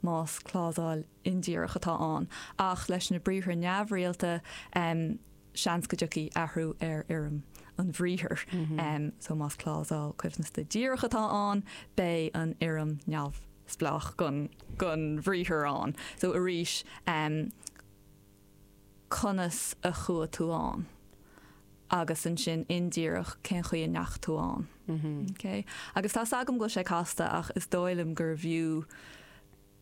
más clásal indíreach atá ann, ach leis na briathra neamhrialta, seans go dtiocfaidh athrú ar fhoirm an bhriathair, so más clásal coibhneasta díreach atá ann, beidh an fhoirm neamhspleách den bhriathar ann, so arís, conas a chuaigh tú ann agus ansin indíreach cén chaoi a ndeachaigh tú ann. Ok? Agus tá 's agam go bhfuil sé casta ach is dóigh liom gurbh fhiú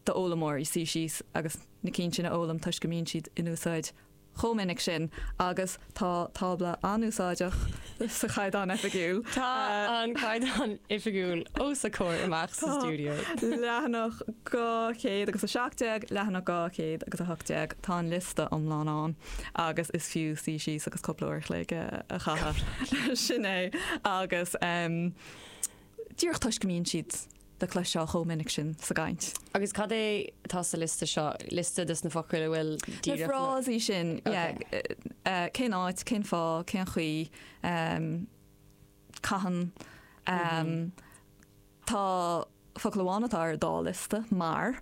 d'fhoghlaimeoirí suí síos agus na cinn sin a fhoghlaim toisc go mbíonn siad in úsáid chomh minic sin agus Tá tábla an-úsáideach sa Chaighdeán Oifigiúil. Tá an Caighdeán Oifigiúil os ár gcomhair amach sa stiúideo. Tá leathanach dhá chéad agus a seacht déag, leathanach dhá chéad agus a hocht déag, tá an liosta iomlán ann agus is fiú suí síos agus cúpla uair a chloig a chaitheamh. Sin é agus. díreach toisc go mbíonn siad le cloisteáil chomh minic sin sa gcaint. Agus cad é atá sa liosta seo, liosta dos na focail atá díreach nó. Na frásaí sin, yeah. Cén áit, cén fáth, cén chaoi, cathain. Tá focal amháin atá ar an dá liosta, mar.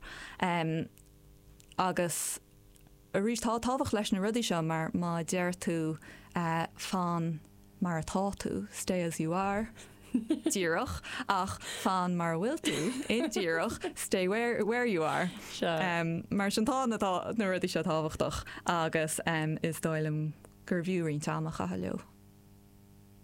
Agus. Arís, tá tábhacht leis na rudaí seo mar má deir tú 'fan mar atá tú', stay as you are, díreach, ach 'fan mar a bhfuil tú', indíreach, stay where where you are. Mar sin, tá na na rudaí seo tábhachtach agus is dóigh liom gurbh fhiú roinnt ama a chaitheamh leo.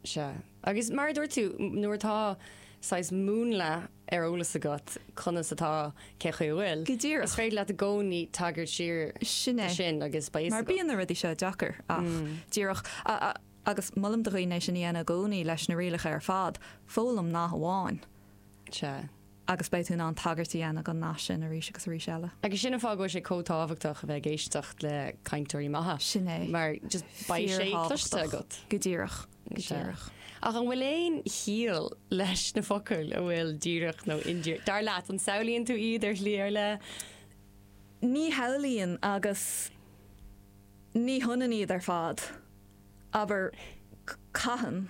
Sea. Agus mar a dúirt tú, nuair atá saghas múnla ar eolas agat conas atá, cén chaoi a bhfuil, is féidir leat i gcónaí tagairt siar do sin agus beidh a fhios agat. Mar bíonn na rudaí seo deacair ach díreach agus molaim do dhaoine é sin a dhéanamh i gcónaí leis na rialacha ar fad, foghlaim nath amháin. Sea. agus beidh tú in ann tagairt a dhéanamh don nath sin arís agus arís eile. Agus sin an fáth go bhfuil sé chomh tábhachtach a bheith ag éisteacht le cainteoirí maithe. Sin é. Mar just beidh sé cloiste Fíorthábhachtach. agat. Go díreach. Go Sea. díreach. Ach an bhfuil aon chiall leis na focail a bhfuil 'díreach' nó 'indíreach', dar leat? An samhlaíonn tú iad ar shlí ar leith? Ní shamhlaíonn agus ní hionann iad ar fad. Abair, cathain.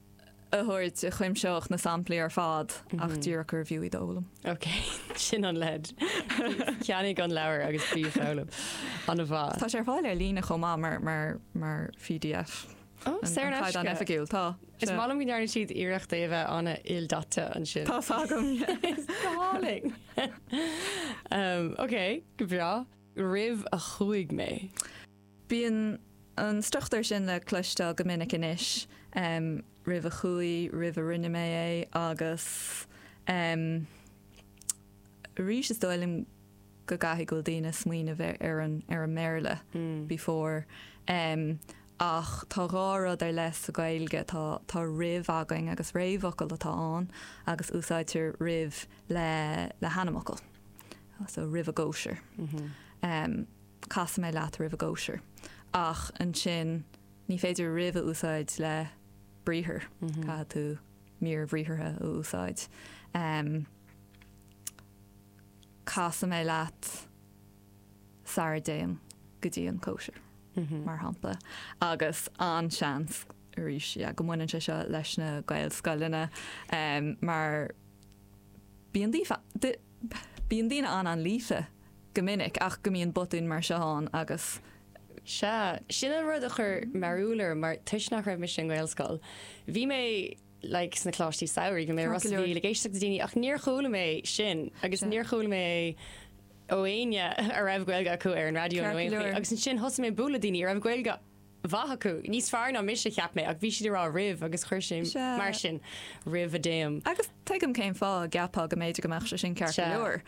a thabhairt a chuimseodh na samplaí ar fad ach díreach gurbh fhiú iad a fhoghlaim. Ok, sin an leid. Ceannaigh an leabhar agus bí ag foghlaim. Ana mhaith. Tá sé ar fáil ar líne chomh maith mar, mar, mar pdf. Ó, saor in aisce. An caighdeán oifigiúil, tá. Is maith liom go ndearna siad iarracht é a bheith ana-ildaite ansin. Tá fadh agam. It's galling! Umm, ok, go breá. Roimh a chuaigh mé. Bíonn an struchtúr sin le cloisteáil go minic anois, roimh a chuaigh, roimh a rinne mé é agus arís is dóigh liom go gcaithfidh go bhfuil daoine ag smaoineamh ar an mBéarla, before, ach tá dhá rud ar leith sa Ghaeilge, tá roimh againn agus réamhfhocal atá ann agus úsáidtear roimh le hainmfhocal, so roimh a gcóisir. Casfaidh mé leat roimh a gcóisir. Ach ansin ní féidir roimh a úsáid le briathar. Caithfidh tú mír bhriathartha a úsáid. Casfaidh mé leat sara dtéim go dtí an cóisir, mar shampla. Agus an-seans arís go mbaineann sé seo leis na Gaelscoileanna mar bíonn daoine an-líofa go minic ach go mbíonn botúin mar seo ann agus. Sea, sin an rud a chuir mearbhall orm mar toisc nach raibh mise i nGaelscoil, bhí mé like sna coláistí samhraidh, bhí mé i Ros a' Mhíl ag éisteacht le daoine ach níor chuala mé sin agus níor chuala mé é ó éinne a raibh Gaeilge acu ar an raidió nó aon áit agus ansin thosaigh mé ag bualadh le daoine a raibh Gaeilge mhaith acu, níos fearr ná mise, cheap mé, ach bhí siad ag rá roimh agus chuir sé mar sin roimh a dtéim. Agus tuigim cén fáth a gceapfá go mb'fhéidir go mbeadh sé sin ceart go leor,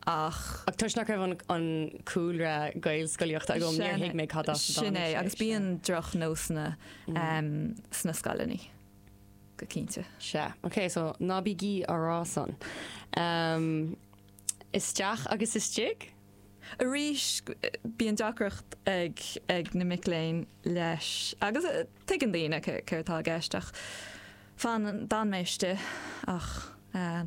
ach. Ach toisc nach raibh an cúlra Gaelscolaíochta agam, níor thuig mé cad as a dtáinig sé. Sin é, agus bíonn drochnósanna sna scoileanna, go cinnte. Sea, ok, so ná bígí á rá san. Isteach agus istigh? Arís bíonn deacracht ag na mic léinn leis agus tuigeann daoine céard tá i gceist ach fanann, d'fhan mé istigh ach tá.